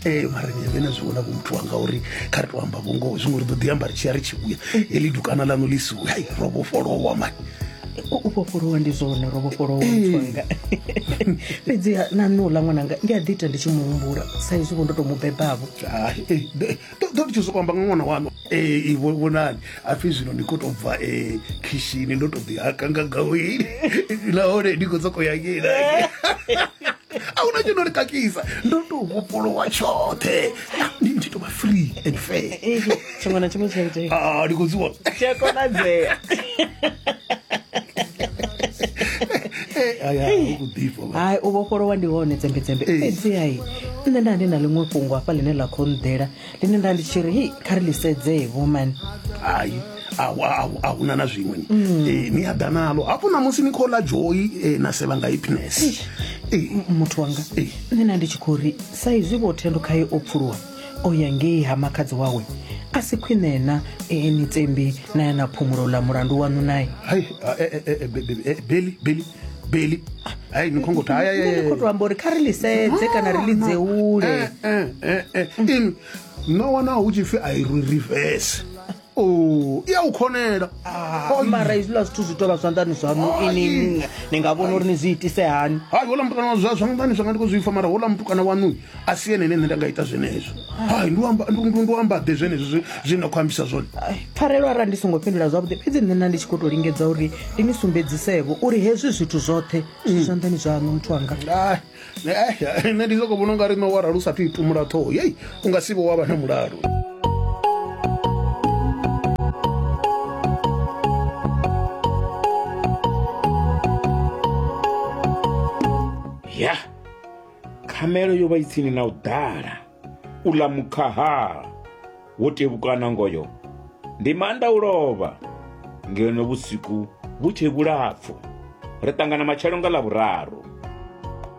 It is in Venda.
Eh, mara ni vhe na zwi vhona vho muthu wanga uri kha ri to amba vhungoho zwiṅwe ri ḓo ḓi amba ri tshi ya ri tshi vhuya eli dukana ḽaṋu ḽi siwe hai ro vhofholowa mani u vhofholowa ndi zwone ro vhofholowa muthu wanga fhedziha na nṋe uḽa ṅwananga ndi a ḓi ita ndi tshi mu humbula sa izwi vho ndo tou mu bebavho Hai, eh, de- do- do ndi tshi sokou amba nga ṅwana waṋu Eh, vho- vhonani apfi zwino ndi khou tou bva eh, khishini ndo tou ḓihaka nga gaweni nahone ndi khou sokou ya ngei na ngei. a huna tshi no ri kakisa ndo to vhofholowa tshoṱhe ndi ndi to vha free and fair tshiṅwe na tshiṅwe tshaitee ah, ndi khou zwi vhona tshi a konadzea hai u vhofholowa ndi hone dzembedzembe fhedzi hai nṋe nda ndi na ḽiṅwe fhungo hafha ḽine ḽa khou nḓela ḽine nda ndi tshi ri hei kha ri ḽi sedzee woman hai a huna na zwiṅwe ni mm. eh, ni a ḓa nalo hafho na musi ni khou ḽa joyi eh, na sevha nga happiness eh. muthu wanga nṋe na ndi tshi khou ri sa izwi vho thendo khaye o pfuluwa o ya ngei ha makhadzi wawe a si khwine na ni tsembi na ya na phumulo ḽa mulandu waṋu naye beli beli beli hai ni khongo ta Nṋe ni khou tou amba uri kha ri ḽi sedze kana ri ḽi dzeule ini no wana hu tshi pfi a i rwi reverse o i a u khonela Ah, mara hezwiḽa zwithu zwi tou vha zwanḓani zwaṋu ini ni nga vhona uri ni zwi itise hani hai hola mutukana wa zwa zwanḓani zwanga ndi khou zwi pfa mara hola mutukana waṋu a si ene ene nṋe nda nga ita zwenezwo hai ndi amba ḓe zwenezwo zwine na khou ambisa zwone pfarelo arali ndi songo fhindula zwavhuḓi fhedzi nṋe na ndi tshi khou tou lingedza uri ndi ni sumbedzisevho uri hezwi zwithu zwoṱhe zwi zwanḓani zwaṋu muthu wanga nṋe ndi soko vhona u nga ri no warali u sathu i tumula ṱhoho yei u nga si vho wa vha na mulalo khamelo yo vha i tsini na u ḓala u ḽa mukhaha wo tevhukana ngoyo ndi maanḓa u lovha ngeno vhusiku vhu tshe vhulapfu ri ṱangana matshelo nga ḽa vhuraru